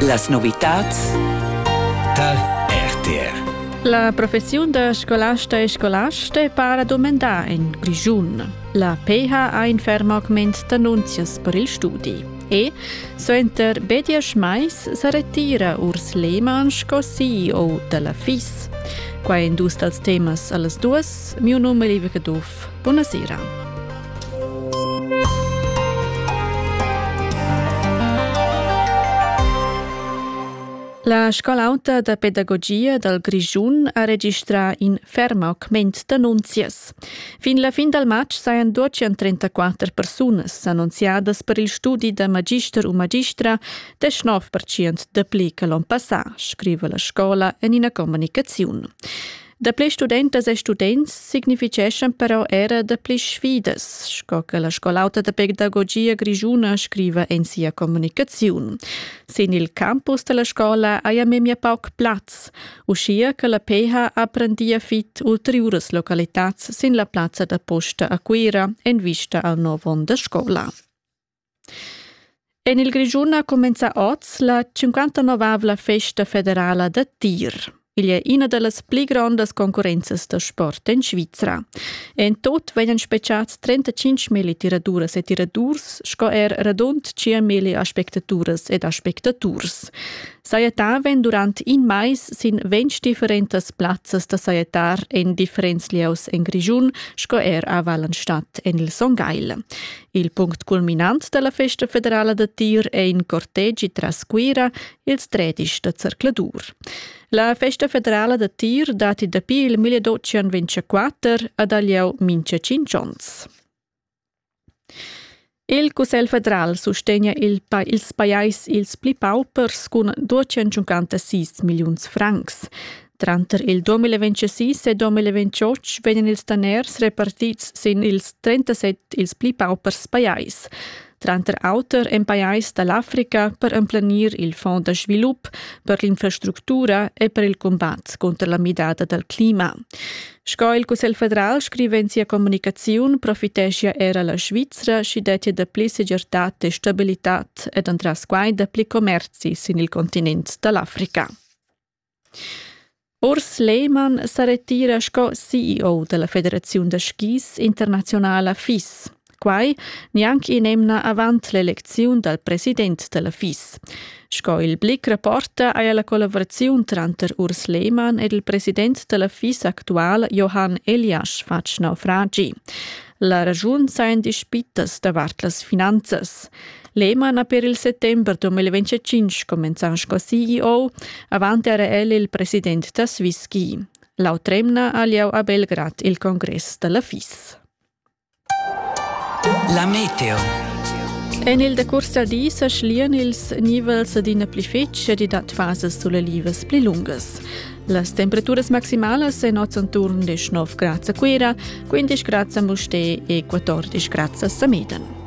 Las novitads dal RTR La professiun da scolasta e scolasta è para domandà en Grischun. La PH ha in ferm augment d'annunzias per il studi. E suenter Bedias Mais sa retira Urs Lehmann sco CEO da la FIS. Qua è in dus dals temas a las duas. Mio num è Liebe Caduff. Buna sera. La scola auta da pedagogia dal Grischun ha registrà in ferm augment d'annunzias. Fin la fin dal matg sajan 234 persunas annunziadas per il studi da magister u magistra, 19% dapli che l'onn passà, scriva la scola en ina comunicaziun. Dapli studentas e students significheschan però era dapli sfidas, sco che la scolauta da pedagogia grischuna scriva en sia communicaziun. Sin il campus della scola haja memia pauc plaz, uschia che la PH apprendia fit ulteriuras localitats sin la plazza da posta a Cuira en vista al nuovo onda scola. En il Grischun ha cumenzà oz la 59 festa federala da tir. Igl è ina da las pli grondas concurrenzas da sport en Svizra. En tut vegnan spechads 35 milli tiraduras e tiradurs sco er radund 5 milli aspectaturas ed aspectaturs. Sajettavan durant in mais sin ventg differentas plazzas da sajettar en differents lieus en Grischun sco er a Wallenstadt en il Son Gagl. Il punct culminant della festa federala da Tir è in cortegi tras Cuira, ils tredisch da Zercladur. La festa federala da Tir dati dapi il 1224 ad Alieu mincha 5 ons. Il Cussel federal sustegna il pa ils pajais ils pli paupers cun 256 milliuns francs. Tranter il 2026 e 2028 vegnan ils daners repartids sin ils 37 ils pli paupers pajais. Tranter auter en pajais da l'Africa per emplenir il Fonds da svilup per l'infrastructura e per il combat contro la midada dal clima. Sco il Cussegl federal scrive in sia comunicaziun, profiteschia era la Svizra sch'i dettia dapli segirtad e stabilitad ed entras quai dapli commerzi sin il continent da l'Africa. Urs Lehmann sa retira sco CEO dalla federaziun da skis internaziunala FIS. Quai gnanc in'emna avant l'elecziun dal president dalla FIS. Sco il Blick rapporta haja la collavuraziun tranter Urs Lehmann ed il president dalla FIS actual Johann Eliasch fatg naufragi. La raschun sajan dispitas davart las finanzas. L'emana per il settember 2025 comenzan sco CEO avant era el il president da Swisski. L'autremna ha lieu a Belgrad il congress dalla FIS. La meteo. En il decurs da di sa schlian ils nivels d'ina pli fetg e dat fases sulelivas pli lungas. Las temperaturas maximalas en oz enturn 19 grad a Cuira, 15 grad a Mustè e 14 grad a Sameden.